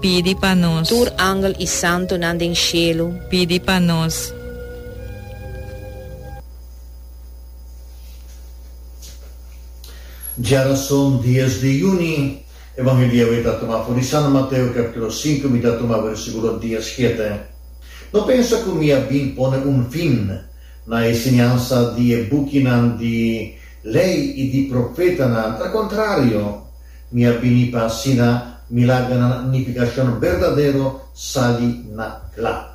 Pidi pa nos. Tur angel i santunan den shelu. Pidi pa nos. Djarason dies di juni, Evangelio ei ta tuma for di San Mateo capitulo sinku, mi ta tuma versikulo dia siete. No pensa ku mi a bin pone un fin na e siñansa di e bukinan di Lei i di Profetanan, alkontrario, Mi a bini pa asina milagranan na unificacion berdadero sali na cla.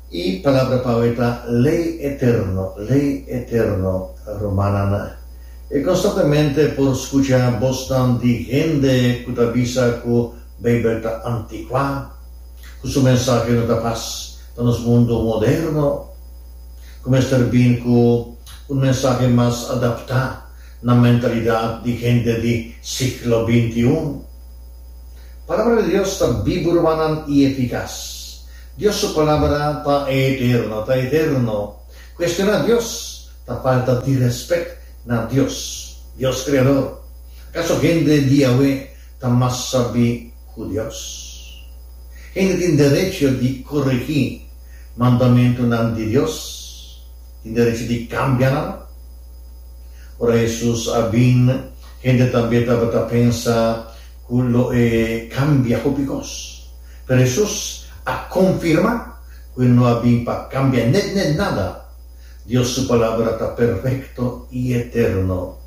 Y palabra pa awe ta ley eterno, ley eterno, rumannan. E constantemente por scucha bosnan di hende cu ta bisa cu Bijbel ta antiqua, cu su mensahe no ta pas pa nos mundo moderno, cu mester bin cu un mensahe mas adapta na mentalidad di hende di siglo bintiun. Palabra di Dios ta bibu rubanan y eficaz. Dios su Palabra ta eterno, ta eterno. Cuestiona Dios ta falta di respect na Dios, Dios Creador. Acaso hende di awe ta mas sabi cu Dios? Hende tin derecho di coregi mandamentunan di Dios? tin derecho di cambia nan. Ora Jesus a bin, hende tambe tabata pensa cu lo e cambia hopi cos. Pero Jesus a confirma cu e no a bin pa cambia net net nada. Dios su Palabra ta perfecto y eterno.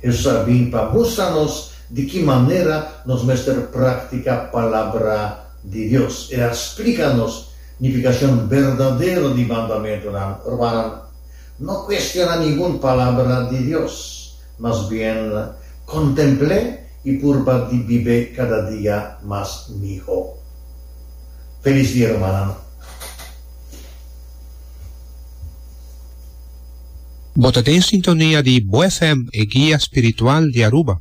Jesus a bin pa mustra nos di ki manera nos mester practica Palabra di Dios. E a splica nos Nifikashon berdadero di mandamentunan. Rumannan, no kuestioná ningun palabra di Dios, mas bien kontempl'é i purba di bib'é kada dia mas mihó. Felis dia rumannan. Bo ta den sintonia di Bo FM, e guia spiritual di Aruba.